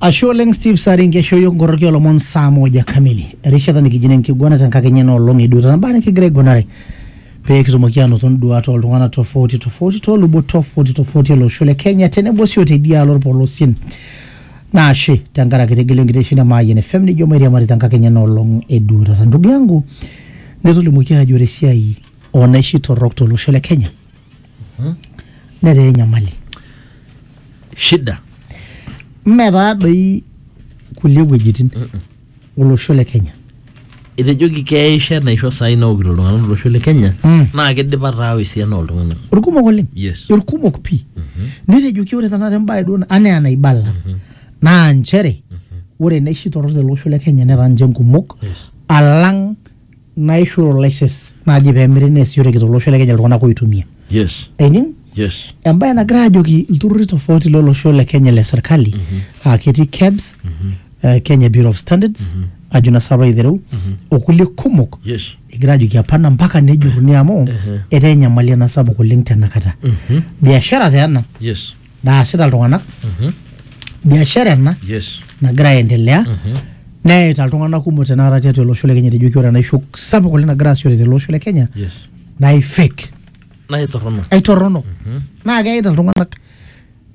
Ashe oleng Steve Sari nkeshoyo nkoroki olomon saa moja kamili. Erishata nikijine enkiguana tenkakenya ena olong eduo tanabaa nikigira aiguanare pee kitumoki aanoto nduat oltung'ana tofauti tofauti toolubot tofauti tofauti ele osho le Kenya tenebo sii oteidialo olpolosien. Naa ashe tenkaraki itegelo enkitesheni e Mayian FM nijo mairiamari tenkakenya ena olong eduo taata. Ndugu yangu netolimuoki aajo ore esiai oo naishi torrok tolosho le Kenya netaa enyamali. shida mme taa doi kulie wuejitin olosho le kenya etejoki keisho enaisho saai naokito iltung'anak tolosho le kenya Mm. naa kidipa taawa esiana ooltung'anak irkumok oleng Yes. irkumok pii netejoki ore tenakata embae duo na- anaa enaibala naa nchere ore naishi torrok tele osho le kenya netaa ninche nkumok alang naishu license naaji peemiri neesishoreki tolosho le Kenya iltung'anak oitumia. Yes. Aining? Yes. Embae nagira ajoki ilturrurri tofauti lolosho le Kenya le serkali aa ketii KEBS, eh, Kenya Bureau of Standards, ajo naa sapa aitereu, okulie kumok Yes. egira ajoki hapana mpaka nejurruni amu etaa enyamali ena sapuk oleng tenakata. Biashara taa ena Yes. naasita iltung'anak Mhm. biashara ena Yes. nagira aendelea Mhm. neyaita iltung'anak kumok tenakata tiatua olosho le kenya tejoki ore enaisho sapuk oleng nagira aasishore tele osho le kenya Yes. naa ifake Naa itorrono. aitorrono naa keyaita iltung'anak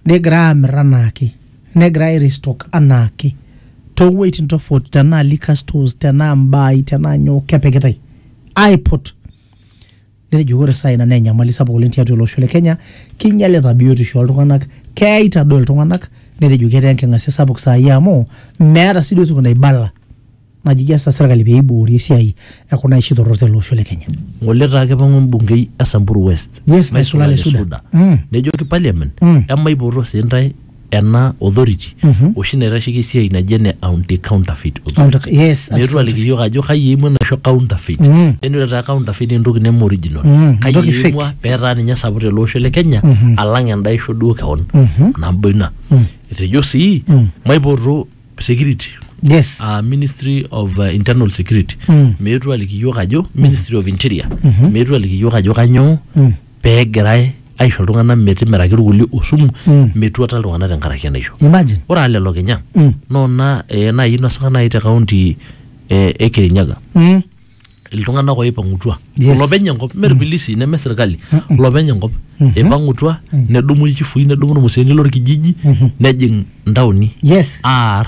negira amir anaake negira airestock anaake toowueitin tofauti tenaa liquor stores tenaa mbaai tenaa nyoo kepikitai aiput Netejo ore saa ina naa enyamali sapuk oleng tiatua ele osho le Kenya, keinyalita biotisho ooltung'anak, keyaita doi iltung'anak netejo ketaa enking'asia sapuk saai amu meeta sii duo toki naibala najo keas serkali pee eiboori esiai e kuna aishi torrok tele osho le Kenya. Ng'ole etaa kipang'u embungei e Samburu West Yes, naisulare Suda. Mm. nejoki parliament Mm. emaipoto sii intae ena authority oshi naitasheki esiai naji ene anti counterfeit Anti- authority yes, anti- meetu aliki yiok ajo kai eimua enaisho counterfeit Mm. yani ore taa counterfeit naa entoki neme original Mm, kai entoki fake. eimua peetaa ninye sapuk tele osho le kenya alang enda isho duo kewon nabo ina etejo sii maipoto security yes uh, ministry of uh, internal security Mm. meetu aliki yiok ajo ministry of interior meetu aliki yiok ajo kanyoo pee egirai aisho iltung'anak metimiraki irkulie osumu Mm. metuata iltung'anak tenkaraki enaisho imagine ore aa lelo kinya Mm. noona eh, naaji inosaka naaji te kaunti eh, e kirinyaga Mm. iltung'anak oipang'utua Yes. lopeny enkop mme irpilisi neme sirkali lopeny enkop ipang'utua nedumu ilchifui nedumu irmuseeni lorkijiji nejing ntaoni yes aar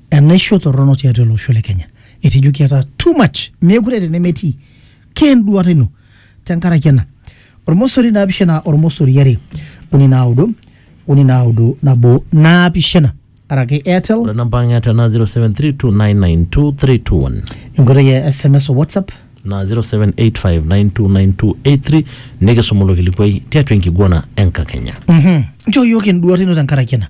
Enaisho torrono tiatua ele osho le Kenya. Etejo kiata too much. Meekure eeta enemetii. Ke enduata ino. Tenkaraki ena. Ormosori naapishana ormosori are uni naudo uni naudo nabo naapishana. Araki Airtel. Ore namba ang e Airtel naa 0732992321. Enkoitoi e SMS o WhatsApp. naa 0785929283 nikisuma ilo kilikuai tiatua enkiguana enkakenya. Nchoo iyiook enduata ino tenkaraki ena.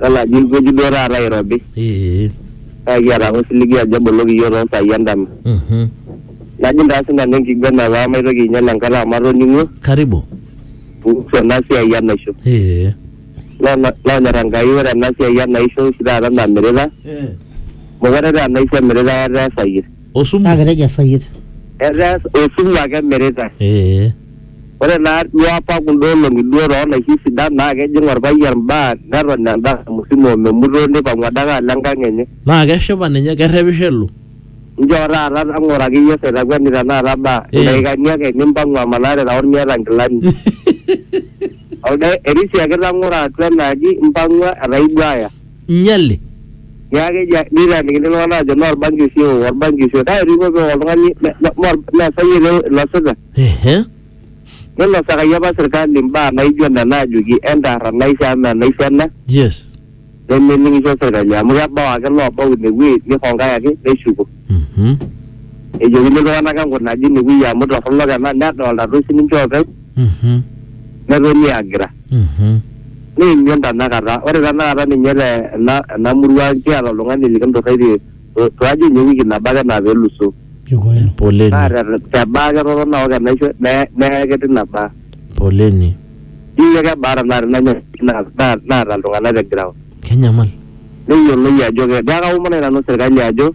Tolaaji ilkueji duo taata irobi. Ee. Kake kiata ake osiligi ajo eboloki iyiook too saai endama. Mhm. Najing taa sinanu enkiguena paa maitoki ainyal enkata amu atoning'uo. Karibu. Kuhusu ena siai enaisho. Ee. Naa lonyor Enkai ore ena siai enaisho oshi taata namirita. Ee. Meekure taa enaisho emiritae etaa esayie. Osumu. Naa ketejo esayiet. Etaa osumu ake emiritae. Ee. Ore naa duo apa kunda olong'i duo too naishi sidan naa kejing olpayian baa neton endama musima o memutoo neipang'u adake alo enkang enye. Naa keshipa ninye kerrepisho elo. Njoo taata tang'oraki iyiook saitakueni tenakata baa Ee. ildaikani ake nimpang'u amanaa te taon miata nkilani. Olda erisiaki tang'oro atua ena aji impang'ua etaa ibuaya. nyale. Niaku keji neitaanikini iltung'ana aajo mee olbanki oshi eok, olbanki oshi eok. Kake etii pooki oltung'ani me- me- me- meesa iyie ele oinosita. Ehe. Neinosakaki apa serkali imbaa naijo nena aajoki entaar enaisho amu mee enaisho ena Yes. nemening'isho serkali amu kebau ake loobau ine wueji neihongai ake neshuko. Mhm. Ejokini iltung'ana enkunaje ine wueji amu torronok ena nedolita toi sininche oopeny Mhm. netoni aagira. Neimion tenakata. Ore tenakata ninye te ena ena murua ang kiata oltung'ani likinturraitie to to aji enye ewiki nabo ake naa peluso. Naa Poleni. te te baa ketotona aok enaisho neye neye ake tina baa. Poleni. Ijo kebaa tenakata ina nyamali na na naata iltung'anak te ground. Kenyamal. Neyioloi ajo ke. Niaku kaomonoki nanu serkali ajo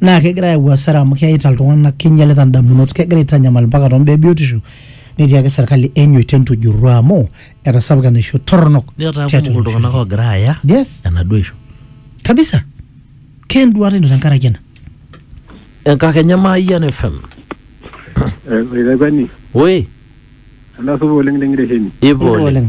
naa kegira ayau hasara amu keyaita iltung'anak keinyialita indamunot kegira aitanyamal mpaka tombaa ebiotisho netii ake serkali enyoito entujurru amu etasapuka enaisho torronok netaa tiatua kumok olosho. iltung'anak oogira aaya yes enaduo isho kabisa kenduata ino tenkaraki ena enkakenya maayian fm Oitakwani, oi endaa supa oleng tengiresheni. ipo Ipo oleng oleng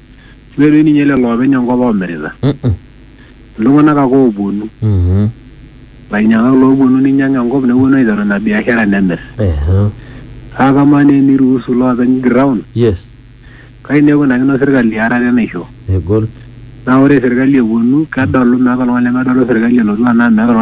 Mee doi ninye lelo oopeny enkop oomirita. Iltung'ana ake oopuonu. Lainyiang'ak loopuonu ninyiang enkop nepuonu aiteru ina biashara nemir. Kake kamaa naa eniruusu iloopeny ground kai naa eikunakino serkali earata enaisho. Naa ore serkali epuonu kedolu meeta oltung'ani lemedolu serkali elotu anaa meeta oltung'ani